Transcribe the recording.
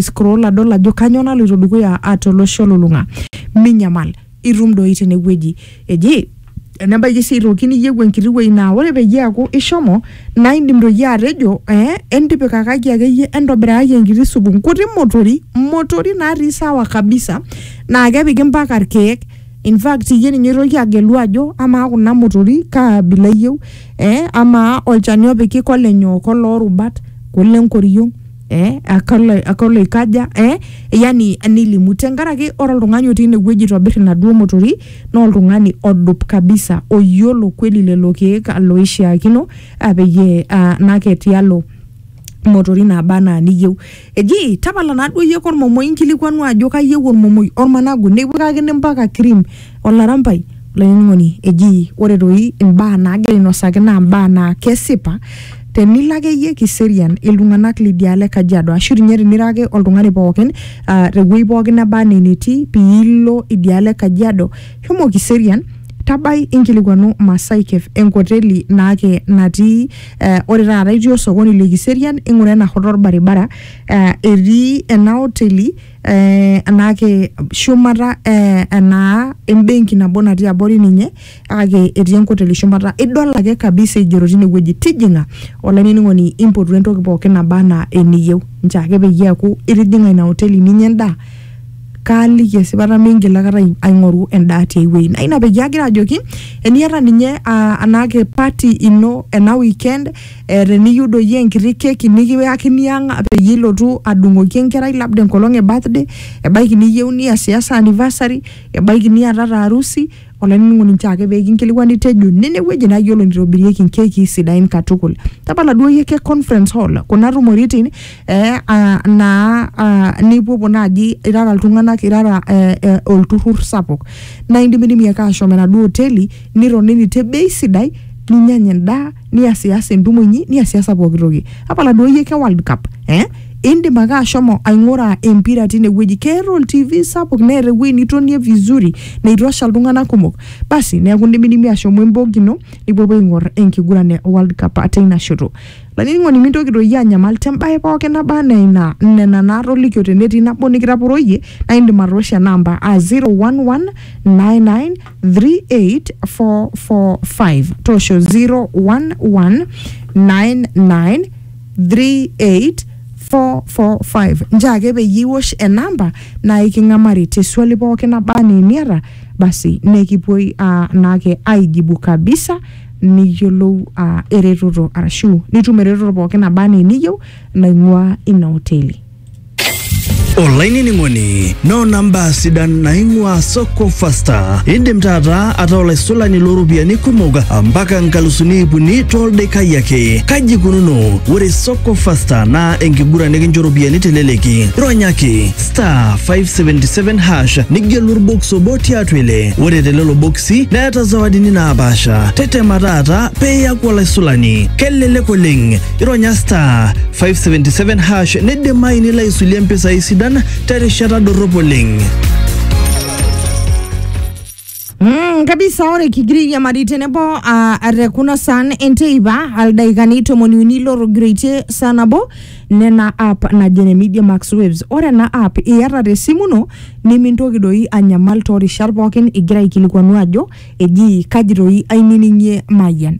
scroll adol ajo kanyoo naloito dukuya ah, tolosho olulung'a minyamal itum doi tenewueji eji enebaiki sii aitoki niyieu enkiti wueji naa ore peyie eaku ishomo naa indim doi atejo eh, entipikakaki akeyie entobirakaki enkiti supu nkuti motori motori natii sawa kabisa naa kepiki mpaka irkeek in fact iyie ninye oitoki agelu ajo amaa kuna motori kaa abila iyieu eh, amaa olchani opiki kolenyoo koloorubat kolenkoriong eh, akalo, akalo ikaja eh, yani nilimu tenkaraki ore oltung'ani otii inewueji aitobir inaduo motori naa oltung'ani odup kabisa oyiolo kweli lelo keek loishiakino ah, peyie ah, nake tialo motori naba anaa niyieu eji tapala naaduo iyie kormomoi inkilikuanu ajo kayieu ormomoi ormanagu nipikakini mpaka cream Olarampai, olainining'oni, eji ore toi imbaa naagira ainosaki naa imbaa naa kesipa tenilo akeyie kiserian iltung'anak lidialo e Kajiado ashu tinye tinira ake oltung'ani pookin uh, tewueji pookin neba anaa enetii piilo idialo e Kajiado shomo kiserian tabai inkilikuanu Masai Cafe enkoteli naake natii eh, ore taata itii osokoni le Kiserian ing'ura ena hoto orbaribara eh, etii ena oteli eh, naake shumata eh, enaa embenki nabo natii abori ninye kake etii enkoteli shumata idol ake kabisa igero tinewueji tijing'a olainining'oni impotu entoki pookin naba anaa eniyieu nchoo ake peyie eaku itijing'a ina hoteli ninya endaa kaaliki esipata mingil akata ai- aing'oru endaa tiai wueji naa ina peyie agira ajoki eniata ninye uh, anaake party ino ena weekend Eh, teniyieu doi enkiti keki nikiyakini ang peyie ilotu adung'oki enkerai labda enkolong e birthday ebaiki niyieu niasiasa anniversary ebaiki niatata harusi olainining'oni nchoo ake pee kinkilikuani tejo nene wueji naa yiolo nitobirieki nkekii sidain katukul tapala duo iyie ke conference hall kuna tumoritin eh, ah, naa ah, nipuopuo naaji irara iltung'anak irara eh, eh, olturrur sapuk naa indimidimi ake ashom enaduo hoteli nitonini te bei sidai ninyanya endaa niasias entumo inyi niasiasa pooki toki apala duo iyie ke world cup eh? indim ake ashomo aing'ura empira tinewueji keeta oltv sapuk neeta ewueji nitonie vizuri neitosha iltung'anak kumok basi neeku indimidimi ashomo embog ino nipuopuo aing'or enkiguran e world cup ate ina shoto laining'oni mintoki doi anyamal tembae pooki naba anaa ina nena naatolikio tenetii nabo nikitaporoyie naa indim atoosho ena amba a 011 99 38445 tosho 011993845 njaa ake peyie iwosh enamba naa iking'amari te swali pooki naba anaa eniata basi nekipuoi ah, naake aijibu kabisa niyiolou ah, eretoto arashu nitum eretoto pooki naba anaa eniyieu naing'ua ina hoteli olainining'oni noona mbaa sidan naing'ua soko fasta indim taata ataa olaisulani looropiyiani kumok mpaka nkalusuni ip uni toldaikai ake kaji ikununo ore soko fasta naa enkiguran nikincho ropiyiani teleleki ronyaki star 577 hash nigelu orbox obo tiatua ile ore telelo boksi neeta zawadini naapaasha tetema taata peeyaku olaisulani kelelek oleng ironya star 577 hash neidimayu nilo aisulie mpisai sidan terishata dorrop oleng. Mm, kabisa ore kigiriamari tenebo uh, te kuna saan enteipa aldaikani tomoni uni lorogiraitie saa nabo nena app najo ene media max waves ore ena app iyata te simu ino nimintoki doi anyamal toorishat pookin igira aikilikuanu ajo eji kaji doi ainining'ie mayian